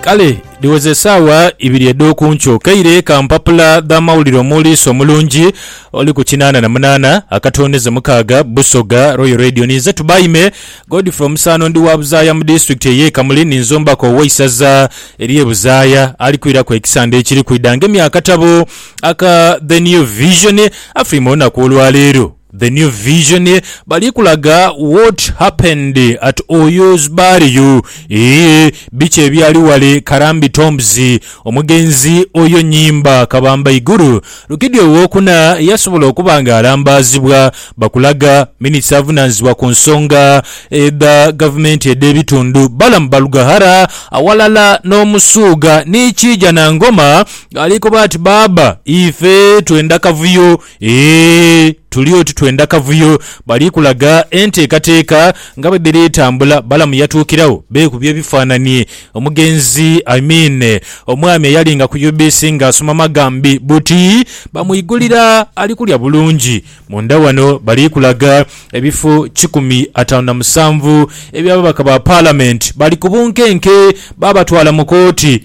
Kale dhiweze esaawa ibiri edh'oku nkyo, kaire ka mpapula dh'amawulire omuwuliisi omulungi oli ku kinaana na munaana akatondeze mukaaga, Busoga, Royal Radio. Ninze Tubaime Godfrey Omusaano ndi wa Buzaaya mu disitulikiti ey'e Kamuli ni nzombako ow'eisaza ery'e Buzaaya ali kwiraku ekisande ekiri kwidha ng'emyakatabo aka The New Vision. Afirime olunaku olwaleero. The New Vision bali kulaga What Happened at Oyo's Burial, ii, Biki Ebyali Ghale Karambi Tombs. Omugenzi Oyo Nyimba Kabamba Iguru Rukidi Owokuna yasobola okuba nga alambaazibwa bakulaga Minisita avunaanyizibwa ku nsonga edha Gavumenti edh'ebitundu, Balaam Barugahara aghalala n'Omusuuga ni Kiija Nangoma ali koba ati, Baaba ife twenda kavuyo. Eeh tuli oti twenda kavuyo. Bali kulaga enteekateeka nga bwe dhiri tambula. Balamu yatuukiragho beekubye ebifaanani. Omugenzi I mean omwami eyali nga ku UBC nga asoma magambi buti bamwigulira ali kulya bulungi. Munda wano bali kulaga ebifo kikumi ataanu na musanvu eby'ababaka ba Palamenti. Bali ku bunkenke babatwala mu kooti.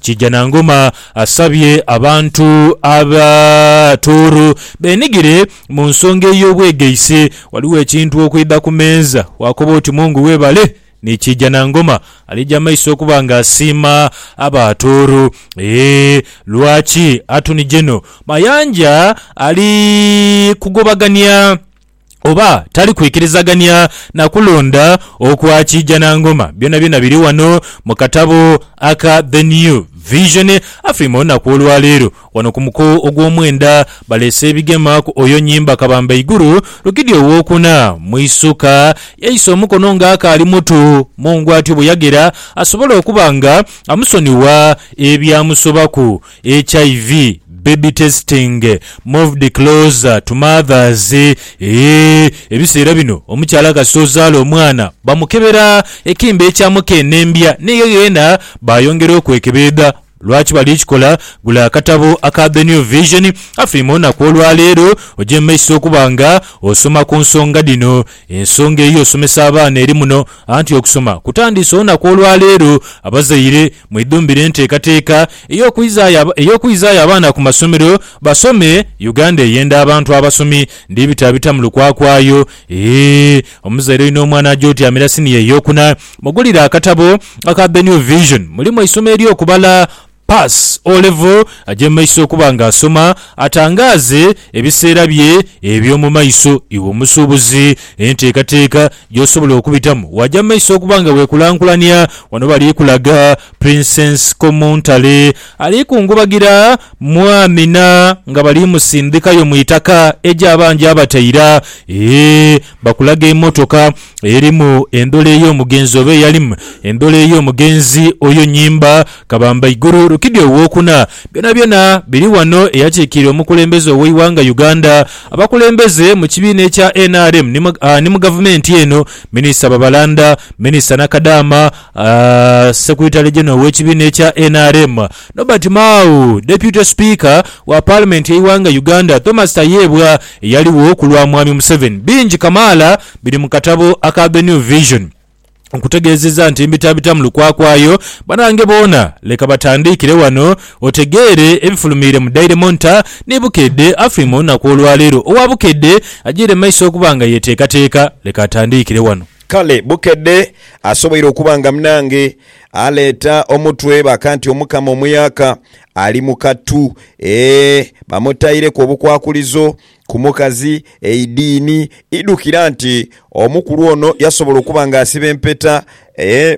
Kijanangoma asabye abantu aba Tooro benigire mu nsonga ey'obwegaise Ghaligho ekintu okwidha ku meeza waakoba oti Mungu webale ni Kijanangoma alija maiso okuba nga asiima aba Tooro eeh lwaki Attorney General Mayanja ali kugobagania oba tali kwikirizagania na kulonda okwa Kiijanangoma. Byonabyona biri wano mu katabo aka The New Vision. Afiima olunaku olwaleero wano ku muko ogwomwenda baleese ebigema ku oyo nyimba kabamba iguru Rukidi owokuna mu isuka yaisa omukono nga akaali mutu mungu atyo bweyagera asobole okuba nga amusonigha ebyamusobaku. HIV baby testing moved closer to mothers eeh Ebiseera bino omukyala kasita ozaala omwana bamukebera ekembe ekya mukeenembya n'eyo yeena bayongera okwekebeedha. Lwaki bali kikola? Gula akatabo aka The New Vision afirime olunaku olwaleero oje mu maiso okuba nga osoma ku nsonga dhino. Ensonga ey'osomesa abaana eri muno anti okusoma kutandiise olunaku olwaleero. Abazaire. Mwidhumbire enteekateeka ey'okwizaayo abaana ku masomero basome Uganda eyenda abantu abasomi. Ndhibitabita mu lukwakwayo. Eeh! Omuzaire olina omwana aja otyamira siniya ey'okuna, mugulire akatabo aka The New Vision. Mulimu eisomo ery'okubala. Pass O-Level aje mu maiso okuba nga asoma, atangaaze ebiseera bye eby'omu maiso. Iwe omusuubuzi, enteekateeka gy'osobola okubitamu waaja mu maiso okuba nga weekulankulania. Wano bali kulaga Princess Komuntale ali kungubagira mu Amina nga bali musindhikayo mu itaka egyo aba ngyabataira. Eeh bakulaga emotoka erimu endhola ey'omugenzi oba eyalimu endhola ey'omugenzi oyo nyimba. Kabamba Iguru Rukidi Ow'okuna, Byonabyona biri wano eyakiikirira omukulembeze ow'eighanga Uganda, abakulembeze mu kibiina ekya nrm ni mu gavumenti eno, Minisita Babalanda, Minisita Nakadaama, Secretary General ow'ekibiina ekya nrm, Nobert Mao, Deputy Speaker wa Palimenti y'eighanga Uganda, Thomas Tayebwa eyaligho ku lwa Mwami Museveni. Bingi kamaala biri mu katabo aka The New Vision. Nkutegeezezza nti mbitabita mu lukwakwayo. Banange boona leka batandiikire wano otegeere ebifulumiire mu Daily Monitor ni Bukedde Afrima olunaku olwaleero. Owa Bukedde ajiire mu maiso okuba nga yeteekateeka. Leka atandiikire wano. Kale Bukedde asoboire okuba nga munange aleeta omutwe baka nti Omukama Omuyaka ali mu kattu. Eeh! Bamutaireku obukwakulizo Ku mukazi, eidiini idhukira nti omukulu ono yasobola okuba nga asiba empeta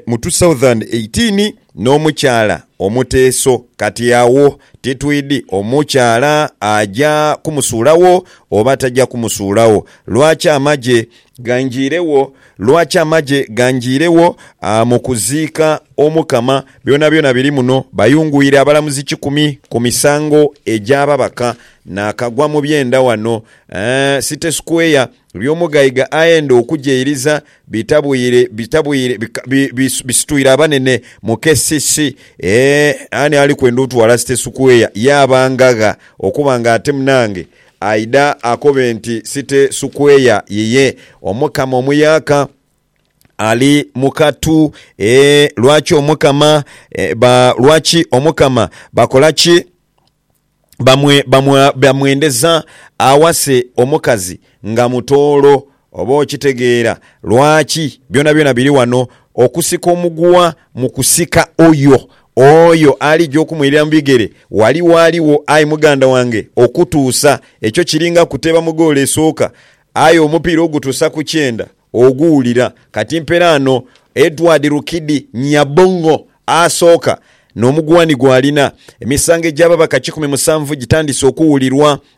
mu 2018 n'omukyala omuteeso. Kati agho titwidhi omukyala aja kumusuulagho oba taja kumusuulagho. Lwaki amagye Gangiiregho, lwaki amagye gangiiregho mu kuziika Omukama? Byonabyona biri muno. Bayungwire abalamuzi kikumi ku misango egy'ababaka naakagwa mu byenda wano. City Square, Byomugaiga aenda okugyeiriza bitabwire bitabwire bisitwire abanene mu KCC. Eeh, ani ali kwenda otwala City Square yaaba ngagha okuba nga ate munange Aidha akobe nti, Site Sukweya yiye Omukama omuyaaka ali mu katu. Ee, lwaki Omukama, ee, ba, lwaki Omukama bakola ki? Bamwe, bamwa, bamwendeza awase omukazi nga mutoolo, Oba okitegeera lwaki byonabyona biri wano, okusika omuguwa mu kusika Oyo, Oyo alija okumwirira mu bigere, wali waligho, aye muganda wange, okutuusa. Ekyo kiringa kuteeba mu goolo esooka, aye omupiira ogutuusa ku kyenda oguwulira. Kati mperaano, Edward Rukidi Nyabong'o asooka, n'omuguwa ni gw'alina. Emisango egy'ababaka kikumi musanvu gitandise okuwulirwa,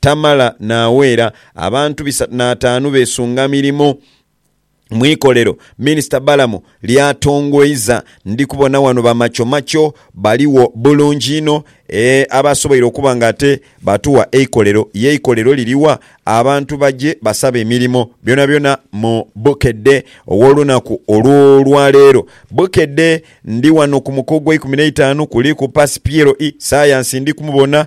Tamala n'aweera abantu bisatu n'ataanu beesunga mirimo mu ikolero Minisita Balamu ly'atongoiza. Ndi kubona wano bamachomacho baligho bulungi inho abasoboire okuba nga ate batuwa eikolero. Ye eikolero liri wa? Abantu baje basabe emirimo byonabyona mu Bukedde ow'olunaku olw'olwaleero. Bukedde ndi wano ku muko ogw'eikumi n'eitaanu, kuliku Pasi Piero I. Sayansi ndi kumubona.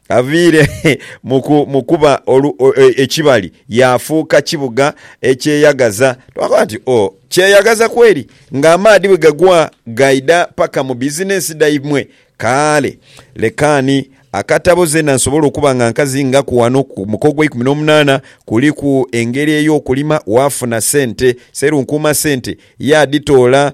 Aviire mu kuba ekibali yaafuuka kibuga ekyeyagaza. Twakoba nti, O, kyeyagaza kweri! Ng'amaadhi bwe gagwa gaidha paka mu bizinensi dhaimwe. Kale, lekaani akatabo zeena nsobole okuba nga nkazingaku ghano ku muka ogweikumi n'omunaana, kuliku engeri ey'okulima waafuna sente. Sserunkuuma sente yaadhitoola.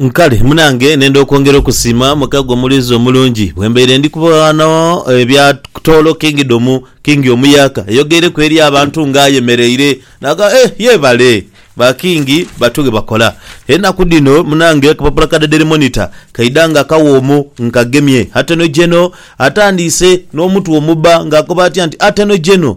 Nkale munange nenda okwongera okusiima muka gwe mulinzi omulungi bwembaire ndi kuba ghano ebya toolo kingdomu Kingi omuyaaka ayogeireku eri abantu nga ayemereire nagamba eeh yebale ba Kingi batu bwebakola enaku dhino munange akapapula ka The Daily Monitor kaidha nga akawoomu nkagemye ateno jeno atandiise nomutwe omubba nga akoba atya nti ateno jeno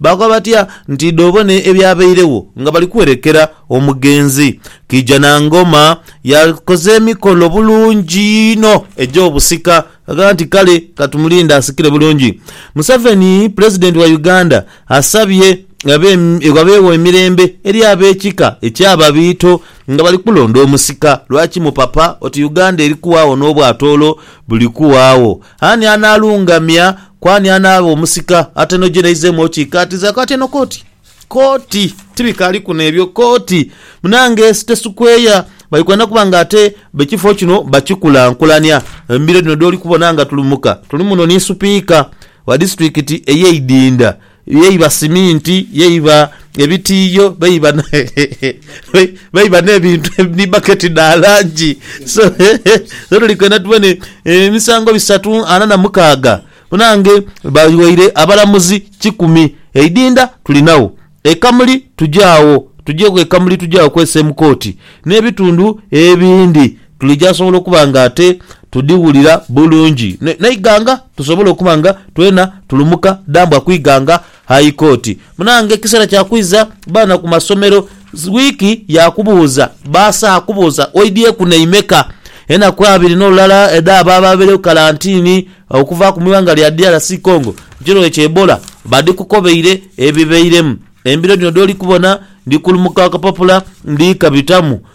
Baakoba batya nti dh'obone ebyabairegho nga bali kwerekera omugenzi. Kijanangoma yakoze emikolo bulungi inho egy'obusika agamba nti kale katumulinde asikire bulungi. Museveni Pulezidenti wa Uganda asabye ghabeegho emirembe eri ab'ekika eky'Ababiito nga bali kulonda omusika. Lwaki mupapa oti Uganda eri kuwaagho n'obwatoolo buli kuwaagho? Ani anaalungamya, ku ani anaaba omusika? Atenogyereizeemu okiikaatiza ako atye no koti. Koti! Tibikaali kuno ebyo, koti! Munange ensi tesukweya, bali kwenda kuba nga ate b'ekifo kino bakikulankulania. Embiro dhino dh'oli kubona nga tulumuka, tuli muno ni Supiika wa disitulikiti ey'eidinda Ye iba siminti, ye iba ebitiiyo, be iba n'ebintu ni baketi dha langi. So, so tuli kwenda tubone emisango bisatu ana na mukaaga banange bawaire abalamuzi kikumi. Eidinda tulinagho, e Kamuli tugya agho, tugya ku e Kamuli tugya agho kwesa e mu kooti n'ebitundu ebindi. Tulija sobola okuba nga ate tudhiwulira bulungi n'eighanga tusobole okuba nga twena tulumuka dambwa ku ighanga High Court. Munange kiseera kya kwiza baana ku masomero, wiiki ya kubuuza baasa akubuuza oidhyeku naimeka. Enaku abiri n'olulala edh'abo ababairegho kalantini okuvaaku mu ighanga lya DRC Congo mu kirwaire kya Ebola badhikukobeire ebibairemu. Embiro dhino dh'oli kubona ndi kulumuka akapapula ndhi kabitamu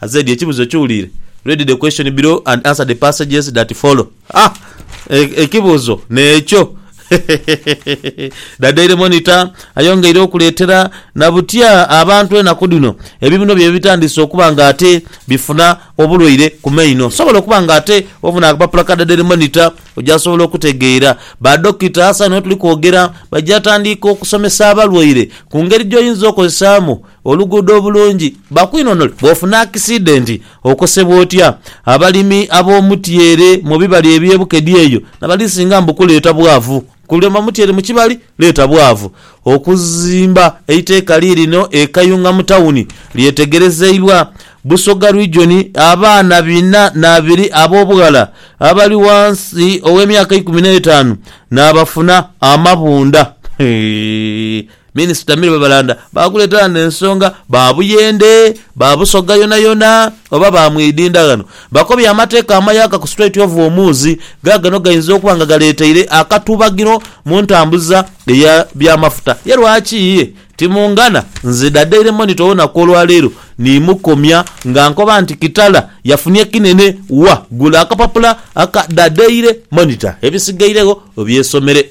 Azedi ekibuzo kiwulire. Read the question below and answer the passages that follow. Ah! E, ekibuzo n'ekyo. The Daily Monitor ayongeire okuleetera na butya abantu enaku dhino ebibuno byaibwe bitandise okuba nga ate bifuna obulwaire ku maino. Osobola okuba nga ate ofuna akapapula ka The Daily Monitor oja sobola okutegeera. Ba Dokita asa n'otuli kwogera baja tandiika okusomesa abalwaire ku ngeri gy'oyinza okozesaamu Oluguudo obulungi bakwinonole bwofuna akisidenti okosebwa otya? Abalimi ab'omutyeere mu bibali eby'e Bukedi eyo nabali singa mbu kuleeta bwavu. Kulima mutyeere mu kibali leeta bwavu. Okuzimba eiteeka liirino e Kayunga mu tawuni lyetegerezeibwa Busoga Region abaana bina n'abiri ab'obughala abali wansi ow'emyaka eikumi n'etaanu naabafuna amabunda. Minisita Mirebabalanda baakuleeta ghano ensonga ba Buyende, ba Busoga yonayona oba ba Mwidinda ghano bakobye amateeka amayaka ku Strait of Hormuz ghaagano gainza okuba nga galeeteire akatubagiro mu ntambuza eya byamafuta. Ye lwaki ye timungana? Nze da Daily Monitor olunaku olwaleero ni mukomya nga nkoba nti Kitala yafunye kinene wa? Gula akapapula aka Da Daily Monitor ebisigairegho obyesomere.